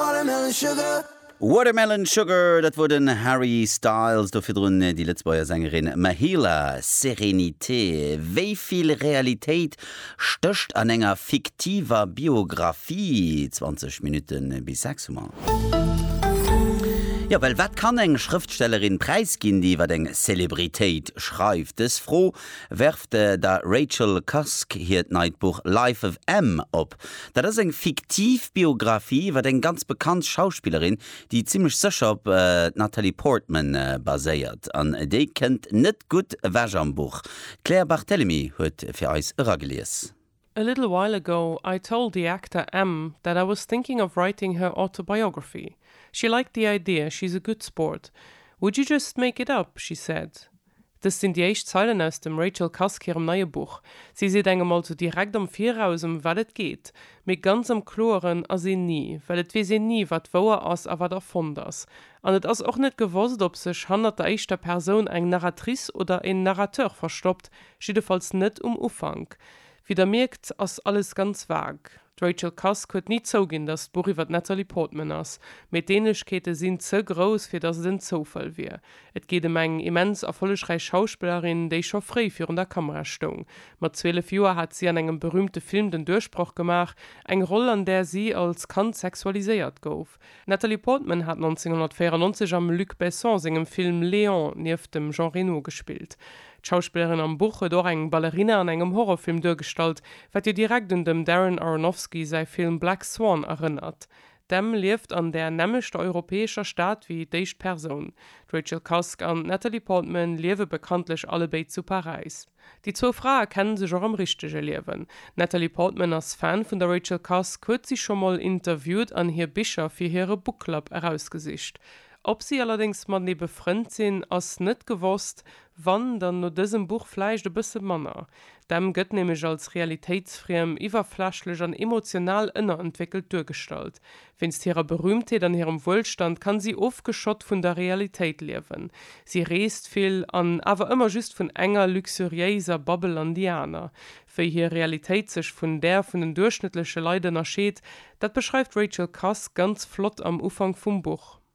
Watermelon Sugar. Watermelon Sugar, dat wor den Harry Styles, do virdrun déi Lëtzbuerger Sängerin Mahela, Sérénité. Wéi vill Realitéit stécht an enger fiktiver Biographie? 20 Minutten bis 6 hu mer. Jo, well wat kann eng Schrëftstellerin präisginn, déi iwwer eng Celebritéit schreift? Dës Fro werft der Rachel Cusk hiert neit Buch Life of M op. Dat ass eng fiktiv Biographie iwwer eng ganz bekannt Schauspillerin, déi zimmlech sécher op d'Natalie Portman baséiert. An déi kënnt net gutt ewech am Buch. D'Claire Barthelemy huet fir eis eragelies. A little while ago I told the actor M that I was thinking of writing her autobiography. She liked the idea, she's a good sport. Would you just make it up? she said. Dëst sinn déi éischt Zeilen aus dem Rachel Cusk hirem neie Buch. Si seet engem also direkt am Viraus, ëm wat et geet. Mee ganz am Kloeren ass een ni, well et weess een ni, wat wouer ass a wat erfonnt ass. An et ass och net gewosst, ob sech hannert der éischter Persoun eng Narratrice oder en Narrateur verstoppt, jiddefalls net um Ufank. Wéi der mierkt, ass alles ganz vague. D'Rachel Cusk huet ni zouginn, datt d'Buch iwwer d'Natalie Portman ass, mee d'Ähnlechkeete sinn ze grouss, fir datt et en Zoufall wier. Et geet ëm eng immens erfollegräich Schauspillerin, déi scho fréi virun der Kamera stoung. Mat 12 Joer hat si an engem berüümte Film den Duerchbroch gemaach, eng Roll, an där si als Kand sexualiséiert gouf. D'Natalie Portman hat 1994 am Luc Besson sengem Film Léon nieft dem Jean Reno gespillt. D'Schauspillerin am Buch huet och eng Ballerina an engem Horrorfilm duergestallt, wat jo direkt un dem Darren Aronofsky säi Film Black Swan erënnert. D'Em lieft an där nämmlechter europäescher Stad wéi d'éischt Persoun. D'Rachel Cusk an d'Natalie Portman liewe bekanntlech allebéid zu Paräis. Déi zwou Frae kenne sech och am richtege Liewen. D'Natalie Portman ass Fan vun der Rachel Cusk, huet si scho mol interviewt an hir Bicher fir hire Book Club erausgesicht. Ob si allerdéngs matenee befrënnt sinn, ass net gewosst, wann, dann no dësem Buch vläicht e bësse manner. D'Em gëtt nämlech als realitéitsfriem, iwwerflächlech an emotional ënnerentwéckelt duergestallt. Wéinst hirer Berühmtheet an hirem Wuelstand kann si ofgeschott vun der Realitéit liewen. Si reest vill an awer ëmmer just vun enger luxuriéiser Babbel an déi aner. Wéi hir Realitéit sech vun där vun den duerchschnëttleche Leit ënnerscheet, dat beschreift d'Rachel Cusk ganz flott am Ufank vum Buch.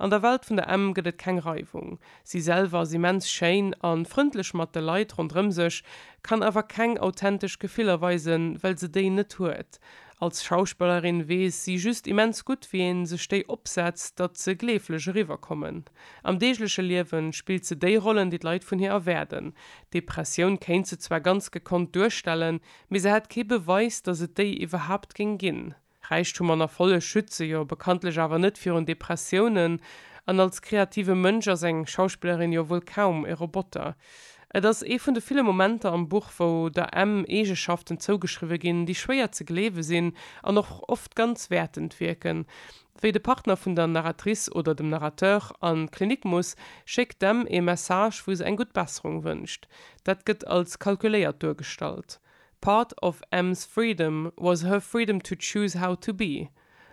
An der Welt vun der Emm gëtt et keng Reiwung. Si selwer ass immens schéin a frëndlech mat de Leit ronderëm sech, kann awer keng authentesch Gefiller weisen, well se déi net huet. Als Schauspellerin weess si just immens gutt, wéi ee sech déi opsetzt, datt se gleeflech eriwwer kommen. Am deegleche Liewe spillt se déi Rollen, déi d'Leit vun hir erwaarden. Depressioun kéint se zwar ganz gekonnt duerstellen, mee se hätt kee Beweis, datt et déi iwwerhaapt géing ginn. Räichtum an Erfolleg schütze jo bekanntlech awer net virun Depressiounen, an als kreative Mënsch ass eng Schauspillerin jo wuel kaum e Roboter. Et ass ee vun de ville Momenter am Buch, wou der Em Eegeschaften zougeschriwwe ginn, déi schwéier ze gleewe sinn an och oft ganz wäertend wierken. Wéi de Partner vun der Narratrice oder dem Narrateur an d'Klinik muss, schéckt d'Em ee Message, wou se eng gutt Besserung wënscht. Dat gëtt als kalkuléiert duergestallt. Part of Em's freedom was her freedom to choose how to be.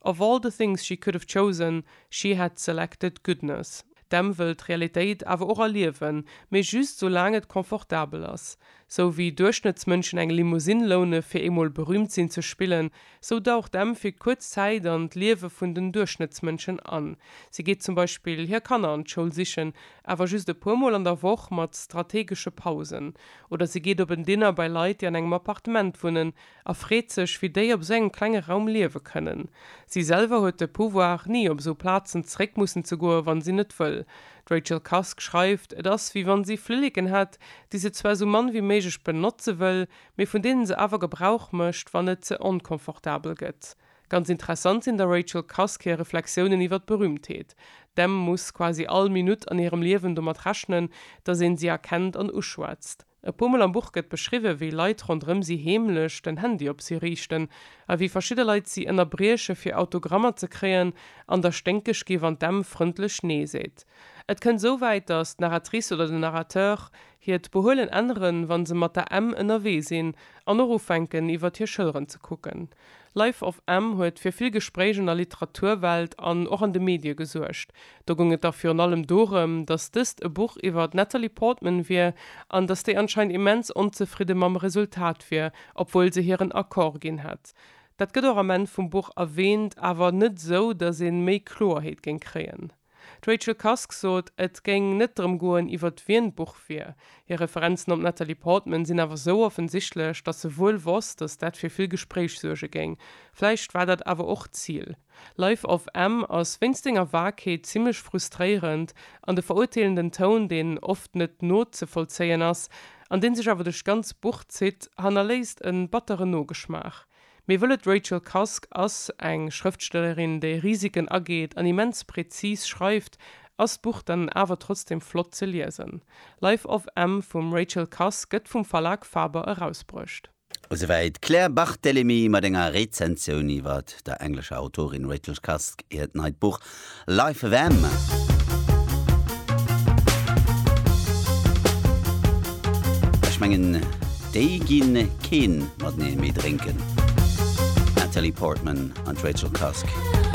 Of all the things she could have chosen, she had selected goodness. D'Em wëll d'Realitéit awer och erliewen, mee just sou laang et confortabel ass. Sou wéi Duerchschnëttsmënschen eng Limousine loune fir eemol berüümt sinn ze spillen, sou daucht d'Em fir kuerz Zäit an d'Liewe vun den Duerchschnëttsmënschen an. Si geet zum Beispill hir Kanner an d'Schoul sichen, awer just e puer Mol an der Woch mat strategesche Pausen. Oder si geet op en Dinner bei Leit, déi an engem Appartement wunnen, a freet sech, wéi déi op esou engem klenge Raum liewe kënnen. Si selwer huet de Pouvoir, ni op esou Plazen zeréck mussen ze goen, wann si net wëll. D'Rachel Cusk schreift, et ass, wéi wann si Flilleken hätt, déi se zwar esou mann wéi méiglech benotze wëll, mee vun deene se awer Gebrauch mécht, wann et ze onconfortabel gëtt. Ganz interessant sinn der Rachel Cusk hir Reflexiounen iwwer d'Berühmtheet. D'Em muss quasi all Minutt an hirem Liewen domat rechnen, datt een si erkennt an uschwätzt. E puer Mol am Buch gëtt beschriwwen, wéi Leit ronderëm si heemlech den Handy op si riichten a wéi verschidde Leit si ënnerbrieche fir Autogrammer ze kréien an der sténkeg gi wann d'Em frëndlech Nee seet. Et kënnt esou wäit, datt d'Narratrice oder den Narrateur hiert Behuelen änneren, wa se mat der Em ënnerwee sinn an och ufänken iwwert hir Schëlleren ze kucken. Life of M huet fir vill Gespréich an der Literaturwelt an och an de Medie gesuergt. Do goung et da virun allem dorëm, datt dëst e Buch iwwer d'Natalie Portman wier an datt déi anscheinend immens onzefridde mam Resultat wier, obwuel se hiren Accord ginn hätt. Dat gëtt och am Enn vum Buch erwäänt, awer net esou, datt ee méi Kloerheet géing kréien. D'Rachel Cusk sot, et géing net drëm goen, iwwert wien d'Buch wier. Hir Referenzen op d'Natalie Portman sinn awer sou offensichtlech, datt se wuel wosst, datt dat fir vill Gespréich suerge géing. Vläicht war dat awer och d'Zil. Life of M ass wéinst senger Vagheet zimmlech frustréierend, an de verurteelenden Toun, deen oft net nozevollzéien ass, an dee sech awer duerch d'ganz Buch zitt, hannerléisst e batteren Nogeschmaach. Mir wëllen D'Rachel Cusk ass eng Schrëftstellerin, déi Risiken ageet an immens präzis schreift. Ass d'Buch dann awer trotzdem flott ze liesen. Life of M vum Rachel Cusk gëtt vum Verlag Faber erausbruecht. Esouwäit d'Claire Barthelemy mat enger Rezensioun iwwert der englescher Autorin Rachel Cusk hiert neit Buch Live FM. Ech mengen déi ginn keen mateneen méi drénken. Natalie Portman an d'Rachel Cusk.